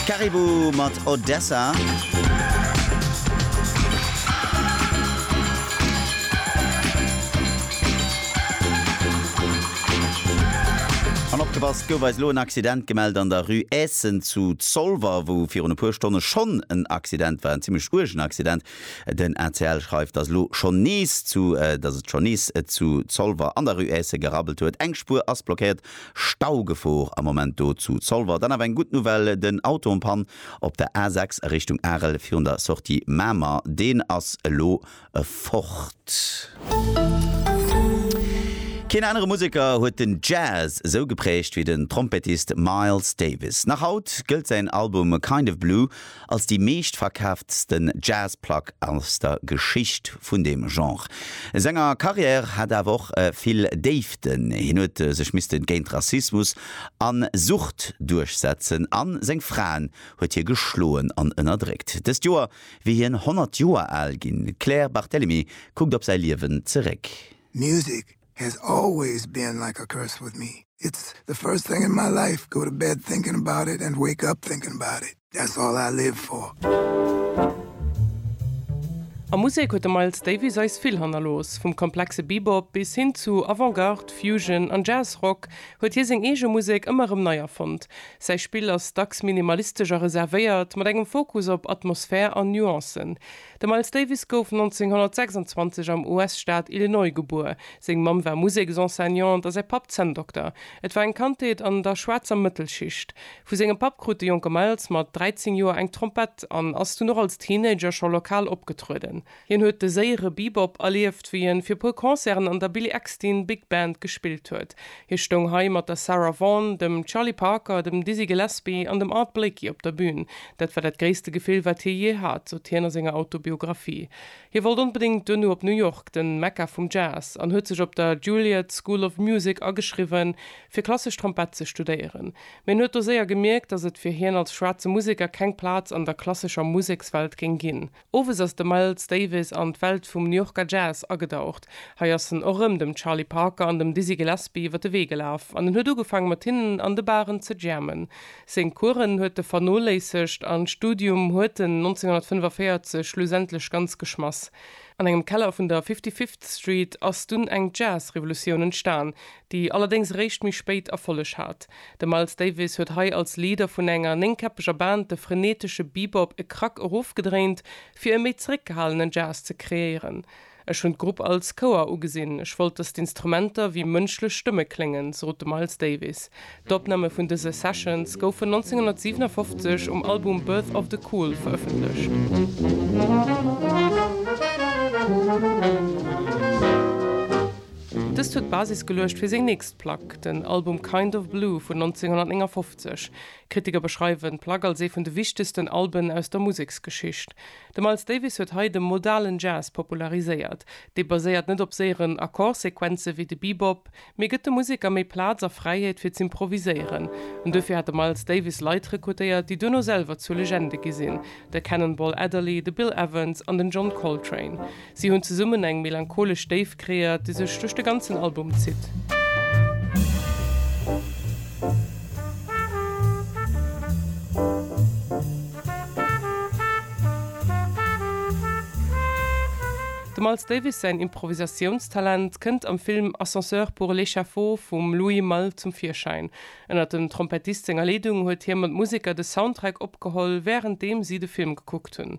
Caribou mat Odessa. An opgepasst, gouf eis elo en Accident gemellt an der Rue Eessen zu Zolwer, wou virun e puer Stonne schonn en Accident war, en zimmlech uergen Accident. Den ACL schreift, dass elo schonn nees zu, dass et schonn nees zu Zolwer an der Rue Eessen gerabbelt huet. Eng Spuer ass blockéiert Staugefor am Moment do zu Zolwer. Dann awer eng gutt Nouvelle, den Auto en panne op der A6 a Richtung Arel virun der Sortie Mamer, deen ass elo fort. Keen anere Museker huet den Jazz esou gepräägt wéi den Trompettist Miles Davis. Nach haut gëllt säin Album Kind of Blue als déi meeschtverkaaftsten Jazz-Plack aus der Geschicht vun deem Genre. Senger Carrière hat awer och vill Déiften. Hien huet sech misste géint Rassismus a Sucht duerchsetzen a seng Fraen huet hie geschloen an ënnerdréckt. Dëst Joer wier hien 100 Joer al ginn. D'Claire Barthelemy kuckt op säi Liewen zeréck. Music Has always been like a curse with me, it's the first thing in my life, go to bed thinking about it and wake up thinking about it, that's all I live for. A Musek huet de Miles Davis eis vill hannerlooss. Vum komplexe Bebop bis hin zu Avant-Garde, Fusion an Jazz-Rock huet hie seng eege Musek ëmmer erëm nei erfonnt. Säi Spill ass dacks minimalistesch a reservéiert, mat engem Fokus op Atmosphär an Nuancen. De Miles Davis gouf 1926 am US-Staat Illinois gebuer. Seng Mamm war Museksenseignante a säi Papp Zänndokter. Et war eng Kandheet an der schwaarzer Mëttelschicht. Vu sengem Papp krut de jonke Miles mat 13 Joer eng Trompett an ass dunn och als Teenager scho lokal opgetrueden. Hien huet de séiere Bebop erlieft, wéi en fir e puer Concerten an der Billy Eckstine Big Band gespillt huet. Hie stoung hei mat der Sarah Vaughan, dem Charlie Parker, dem Dizzy Gillespie an dem Art Blakey op der Bün. Dat war dat gréisste Gefill, wat hie jee hat, sot hien a senger Autobiographie. Hie wollt onbedéngt duerno op New York, den Mekka vum Jazz, an huet sech op der Juilliard School of Music ageschriwwen, fir klassesch Trompett ze studéieren. Mee en huet do séier gemierkt, datt et fir hien als schwaarze Museker keng Plaz an der klassescher Musekswelt géing ginn. Owes ass de Miles Davis an d'Welt vum New Yorker Jazz agedaucht. Hei ass en och rëm dem Charlie Parker an dem Dizzy Gillespie iwwer de Wee gelaf an en huet ugefaang mat hinnen an de Baren ze jammen. Seng Coursen huet e vernoléissegt an d'Studium huet en 1945 schlussendlech ganz geschmass. An engem Keller vun der Fifty-Fifth Street ass dunn eng Jazz-Revolutioun entstan, déi allerdéngs eréischt méi spéit Erfolleg hat. De Miles Davis huet hei als Leader vun enger néngkäppeger Band de frenetesche Bebop e Krack erofgedréint, fir e méi zeréckgehalenen Jazz ze kreéieren. Ech hunn d'Grupp als Chouer ugesinn, ech wollt, datt d'Instrumenter wéi mënschlech Stëmme kléngen, sot de Miles Davis. D'Opname vun dëse Sessions goufen 1957 um Album Birth of the Cool verëffentlecht. Dëst huet d'Basis geluecht fir seng nächst Plack, den Album Kind of Blue vun 1959. Kritiker beschreiwen d'Plack als ee vun de wichtegsten Alben aus der Museksgeschicht. De Miles Davis huet hei de modalen Jazz populariséiert. Dee baséiert net op séieren Akkordsequenze wéi de Bebop, Mee gëtt de Museker méi Plaz a Fräiheet fir z'improviséieren. An duerfir hat de Miles Davis Leit rekrutéiert, déi duerno selwer zur Legende gi sinn, de Cannonball Adderley, de Bill Evans an den John Coltrane. Si hunn zesummen eng melancholesch Déift kreéiert, déi sech duerch de ganzen Album zitt. Dem Miles Davis säin Improvisatiounstalent kënnt am Film Ascenseur pour l'échafaud vum Louis Malle zum Virschäin. Ënnert dem Trompettist senger Leedung huet hie mat Museker de Soundtrack opgeholl, wärenddeem si de Film gekuckt hunn.